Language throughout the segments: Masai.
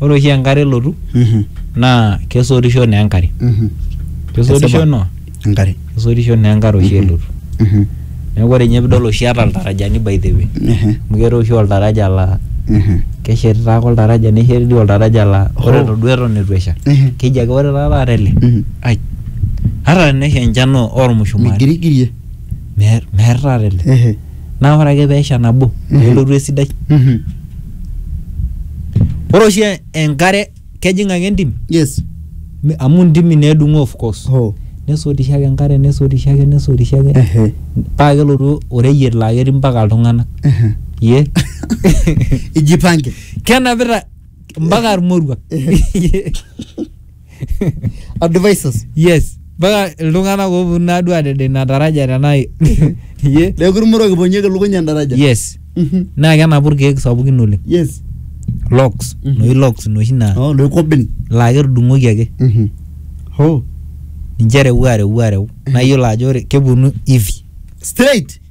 ore oshi enkare elotu Mhm. naa kesotisho naa enkare Mhm. kesotisho Kesipa. no enkare kesotisho naa enkare oshi elotu Mhm. neeku ore ninye pidol oshi eeta iltarajani by the way Ehe. amu keetae oshi oltaraja laa Mhm. keshetita ake oltaraja nesheti dii oltaraja laa ore Hoo. duo eton eitu esha Ehe. keji ake ore taa taata ele Mhm. ai ata tenesha enchan oo- ormushumaani migirigirie meer meer taata ele Ehe. naa ore ake peesha nabo nelotu esidai Mhm. ore oshi enkare kejing ake entim yes mi- amu ntimi needung'oo of course oh nesotisho ake enkare nesotisho ake nesotisho ake ehe paa kelotu oreyiet laa ketii mpaka iltung'anak ehe ye ijipange kenapita mpaka irmoruak o devices yes mpaka iltung'anak ooponu naaduo adede ina taraja tenaa ye neeku irmurok iponieki lukuny endaraja yes Mhm. naa kenapu irkeek sapukin oleng yes locks Mhm. noshi locks noshi naa oh loikobin laa ketudung'oki ake Mhm. oh ninche ereu areu areu naa iyiolo ajo ore keponu hivi straight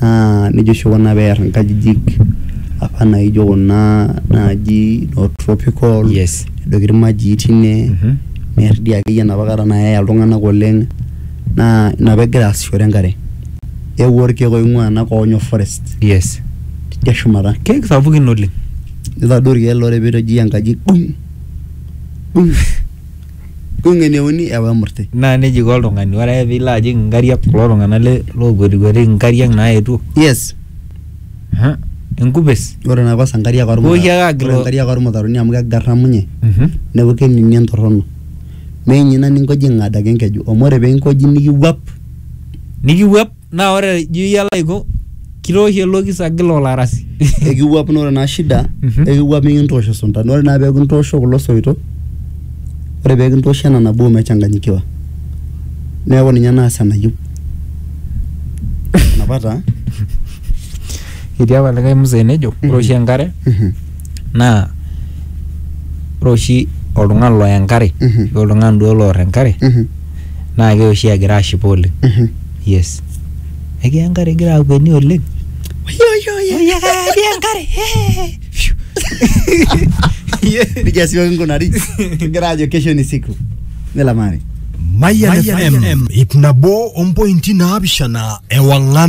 naa nijo oshi kuna pee ear inkajijik apa naijo kuna naaji noo tropical nedoiki ilmajii teine near dii akeyie enapa kata nayaya iltung'anak oleng' naa ina pee egira aasishore enkare. Eewuo ilkeek oing'ua ena kop nyoo forest tidia shumata. Ilkeek sapukin oleng'. Nitadou ilkeek laa ore pee itojia enkaji dung' dung'. Kung'eneuni ewa emurti. Naa neija eiko oltung'ani, ore ake piilo ajing inkariak kulo tung'anak le lookwetikuetiki inkariak naetuo. Yes. Aha, enkupes. Ore ina kos inkariak ormutaroni. Pooki ake agil. Ore inkariak ormutaroni amu kegaramunye. Neeku kening entorrono. Mee ninye ina ninkojing'ada ake enkeju amu ore pee inkoji nikiwuap. Nikiwuap Naa ore ijo iyie alo aiko kitooshi ele okis agil olarasi. ekiwuap naa ore naa shida ekiwuap mikintoosho isunta naa ore naa pee kintoosho kulo soito ore pee kintoosho ena nabo mechanganyikiwa neeku ninye naas enayieu enapa taa Etii apa likae mzee nejo ore oshi enkare Mhm, naa ore oshi oltung'ani loya enkare Mhm. oltung'ani duo loor enkare mhm. naa keoshi egira ashipa oleng yes ekiya enkare igira akueni oleng ekiya enkare Phew. Piga siwaki nkunari. Kigira ajo kesho ni siku. Nilamari. Mayan FM ip nabo ompointi naapishana ewang'an